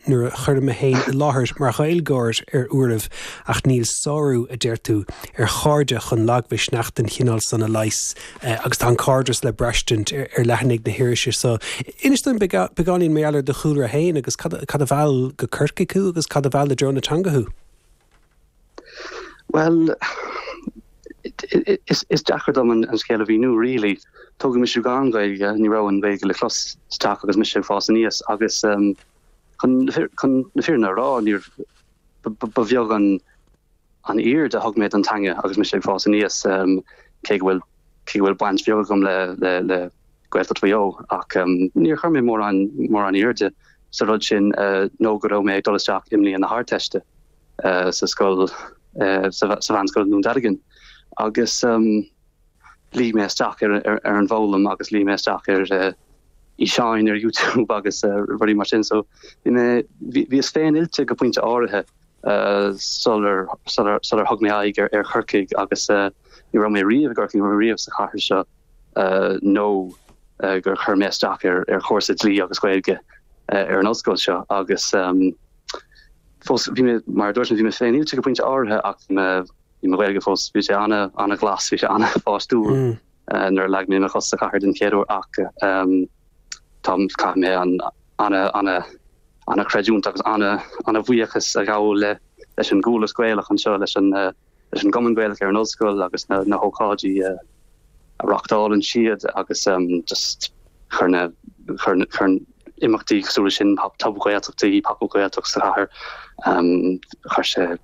nuair a chuirim mé féin i láthair mar Ghaeilgeoir ar uairibh, ach níl sárú, a deir tú, ar chairde chun lagmhisneach den chineál san a leigheas, agus tá an cairdeas le braistint ar leathanaigh na hirise so. Inis dúinn beagáinín mar gheall ar do chúlra féin, agus cad a mheall go Corcaigh thú, agus cad a mheall i dtreo na teanga thú? Bhuel, is deacair dom an scéal a mhíniú really. Tógadh mise gan Gaeilge, ní raibh an Gaeilge le clos sa teach agus mise ag fás aníos agus um, chun na fírinne a rá ba bheag an an aird a thug mé ar an teanga agus mise ag fás aníos um, cé go bhfuil cé go bhfuil baint bheag agam le le le Gaeltacht Mhaigh Eo, ach níor chuir mé mórán airde sa rud sin nó go raibh mé ag dul isteach i mbliain na hArdteiste sa scoil, sa mheánscoil i nDún Dealgan, agus luigh mé isteach ar an bhfoghlaim agus luigh mé isteach ar fhíseáin ar YouTube agus rudaí mar sin, so bhíos féin oilte go pointe áirithe sular thug mé aghaidh ar Chorcaigh agus ní raibh mé riamh i gCorcaigh, ní raibh mé riamh sa chathair seo. nó gur chuir mé isteach ar chúrsa dlí agus Gaeilge ar an ollscoil seo agus fós bhí mé, mar a dúirt mé, bhí mé féin oilte go pointe áirithe ach bhí mo Ghaeilge fós, bhí sé an-ghlas, bhí sé an-pháistiúil nuair a leag mé mo chos sa chathair den chéad uair ach caithfidh mé an-chreidiúint agus an-bhuíochas a ghabháil leis an gCuallacht Ghaelach anseo, leis an leis an gCumann Gaelach ar an ollscoil agus na hócáidí a reachtálann siad agus just chuir imeachtaí cosúil sin Pop-Up Gaeltachtaí, Pop-Up Gaeltacht sa chathair chuir sé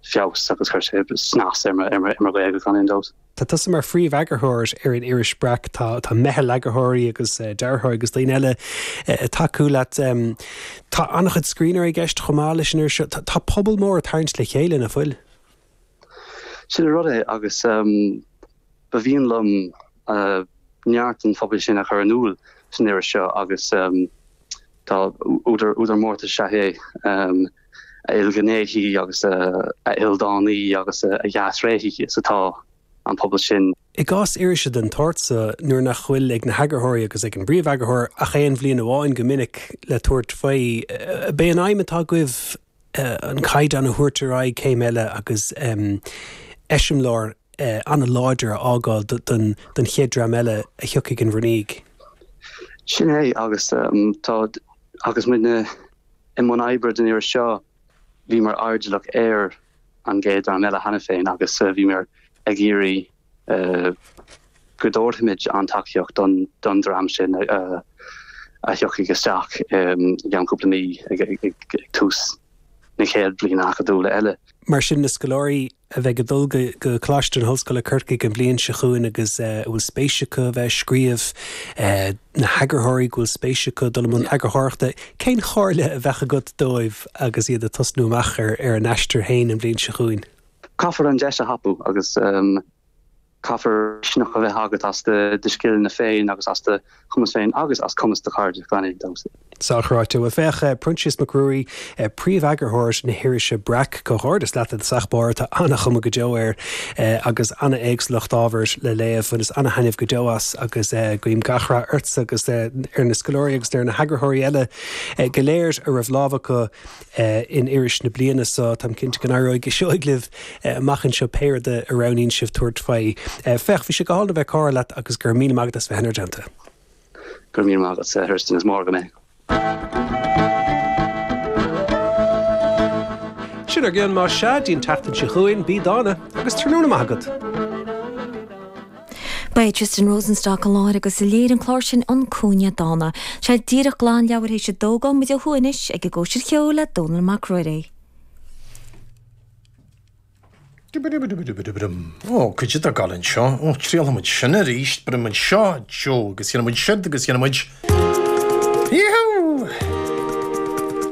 feabhas agus chuir sé snas ar mo Ghaeilge gan aon dabht. Tá tusa mar phríomheagarthóir ar an iris Breac, tá meitheal eagarthóirí agus dearthóirí agus daoine eile ag tacú leat. Tá an-chuid scríbhneoirí i gceist chomh maith leis an iris seo. Tá pobal mór ag tarraingt le chéile, nach bhfuil? Sin an rud é agus ba mhian liom neart an phobail sin a chur in iúl san iris seo agus tá údar mórtais is ea é a ilghnéithí agus a ildánaí agus a dhea-thréithí is atá an pobal sin. I gcás irise den tsórt so, nuair nach bhfuil ag na heagarthóirí agus ag an bpríomheagarthóir ach aon bhliain amháin go minic le tabhairt faoi, b'é an aidhm atá agaibh, an caighdeán a thabhairt ar aghaidh céim eile agus eiseamláir an-láidir a fhágáil don chéad dream eile a thiocfaidh in bhur ndiaidh. Sin é, agus tá, agus muidne i mbun oibre den iarraidh seo, bhíomar airdeallach ar an gcéad dream eile cheana féin agus bhíomar ag iarraidh, go dtabharfaimid an tacaíocht don dream sin a thiocfaidh isteach i gceann cúpla mí ag tús na chéad bhliana acadúla eile. Mar sin, na scoláirí a bheidh ag dul go Coláiste na hOllscoile Corcaigh an bhliain seo chugainn agus a bhfuil spéis acu a bheith ag scríobh, na heagarthóirí go bhfuil spéis acu dul i mbun eagarthóireachta, cén chomhairle a bheadh agat dóibh agus iad ag tosnú amach ar a n-aistear féin an bhliain seo chugainn? Caithfear an deis a thapú agus caithfear misneach a bheith agat as do scileanna féin agus as do chumas féin agus as cumas do chairde, gan aon dabht. Sa chruthú. Bhuel, féach, Proinsias Mac Ruairí, príomheagarthóir na hirise Breac, comhghairdeas leat, a sac barr, tá ana-chuma go deo air agus ana-éagsúlacht ábhair le léamh, bhaineas ana-thaitneamh go deo as agus guím gach rath ortsa agus ar na scoláirí agus ar na heagarthóirí eile go léir a raibh lámh acu in iris na bliana so. Táim cinnte go n-éireoidh go seoigh libh amach anseo, pé rud a roghnaíonn sibh tabhairt faoi. Féach, bhí sé go hálainn a bheith ag comhrá leat agus go raibh míle maith agat as bheith inár dteannta. Go raibh míle maith agat, a Tristan, is mór agam é. Sin ár gcion, más ea, dtí'n tseachtain seo chugainn, bí dána, agus tráthnóna maith agat. Ba é Tristan Rosenstock a láithrigh agus a léirigh an clár sin An Cúinne Dána. Sea, díreach glan leathuair th'éis a dó, gabhfaidh muid ó thuaidh anois ag an gcóisir cheoil le Dónall Mac Ruairí. Ó, caidé tá ag gabháil anseo. Ó, trialfaidh muid sin arís. Brúfaidh muid seo, Joe, agus dhéanfaidh muid siúd, agus dhéanfaidh muid. Yee-hoo!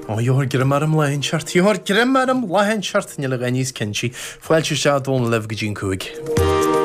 Ó, gheofar greim orm lá inteacht, gheofar greim orm lá inteacht, níl a dhath níos cinnte. Fáilte isteach, Dónall, libh go dtí an cúig.